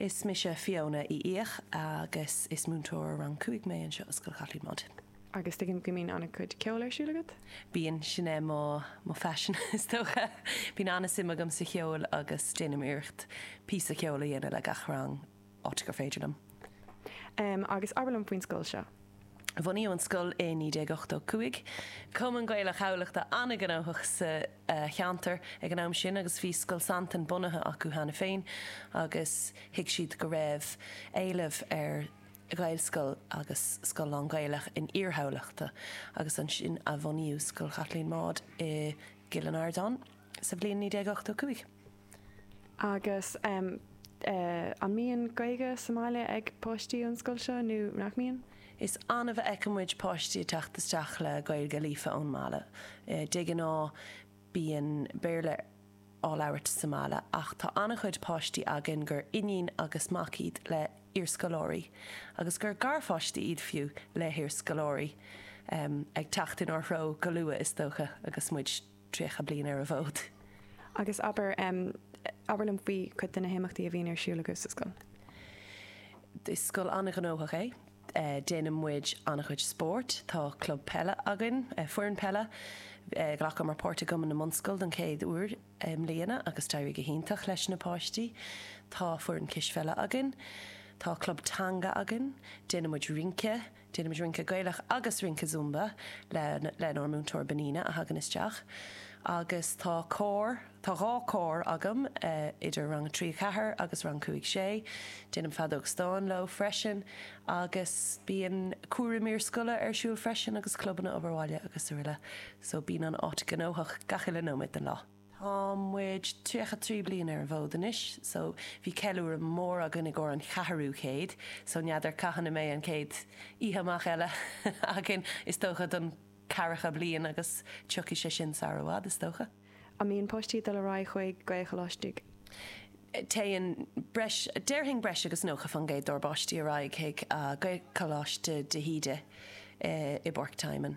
Is mise Fiona Uí Fhiaich agus is múinteoir rang 5 mé anseo i Scoil Chaitlín Maude. Agus tuigim go mbíonn an-chuid ceoil ar siúl agat? Bíonn, sin é mo phaisean is dócha. Bíonn an-suim agam sa cheol agus déanaim iarracht píosa ceoil a dhéanamh le gach rang. áit gur féidir liom. Em, agus abair liom faoin scoil seo. Bhunaíodh an scoil i 1985. Bhí Cumann Gaelach Thamhlachta an-ghnóthach sa cheantar ag an am sin agus bhí Scoil Santain bunaithe acu cheana féin agus thuig siad go raibh éileamh ar Ghaelscoil agus scoil lán-Ghaeilge in iarthar Thamhlachta agus ansin a bhunaíodh Scoil Chaitlín Maude i gCill an Ardáin. sa bhliain 1985. Agus an mbíonn Gaeilge sa mbaile ag páistí ón scoil seo nó nach mbíonn? Is annamh a fheiceann muid páistí ag teacht isteach le Gaeilge líofa ón mbaile. De ghnáth bíonn Béarla á labhairt sa mbaile ach tá an-chuid páistí againn gur iníon agus mac iad le hiarscoláirí, agus gur garpháistí iad fiú le hiarscoláirí, ag teacht inár threo go luath is dócha agus muid. 30 bliain ar an bhfód. Agus abair, em, abair liom faoi chuid de na himeachtaí a bhíonn ar siúl agaibh sa scoil. Is scoil an-ghnóthach é. Eh, déanann muid an-chuid spórt, tá club peile againn, eh, foireann peile, eh, ghlacamar páirt i gCumann na mBunscol don chéad uair i mbliana agus d'éirigh go hiontach leis na páistí. Tá foireann cispheile againn. Tá club teanga againn. Déanann muid rince. Déanann muid rince Gaelach agus rince Zumba le lenár múinteoir Benina a thagann isteach agus tá cór, tá dhá cór agam idir rang a trí, a ceathair agus rang cúig, sé. Déanaim feadóg stáin leo freisin agus bíonn cúram iarscoile ar siúl freisin agus clubanna, obair bhaile agus araile. So bíonn an áit gnóthach gach uile nóiméad den lá. Tá muid tríocha trí bliain ar an bhfód anois so bhí ceiliúradh mór againn i gcomhair an cheathrú chéid so n'fheadar cathain a mbeidh an chéad oíche amach eile againn, is dócha don ceathracha bliain agus tiocfaidh sé sin sar i bhfad is dócha. An mbíonn páistí ag dul ar aghaidh chuig Gaelcholáistí? Téann breis, déarfainn breis agus nócha faoin gcéad dár bpáistí ar aghaidh chuig Gaelcholáiste de hÍde i bPáirc Tymon.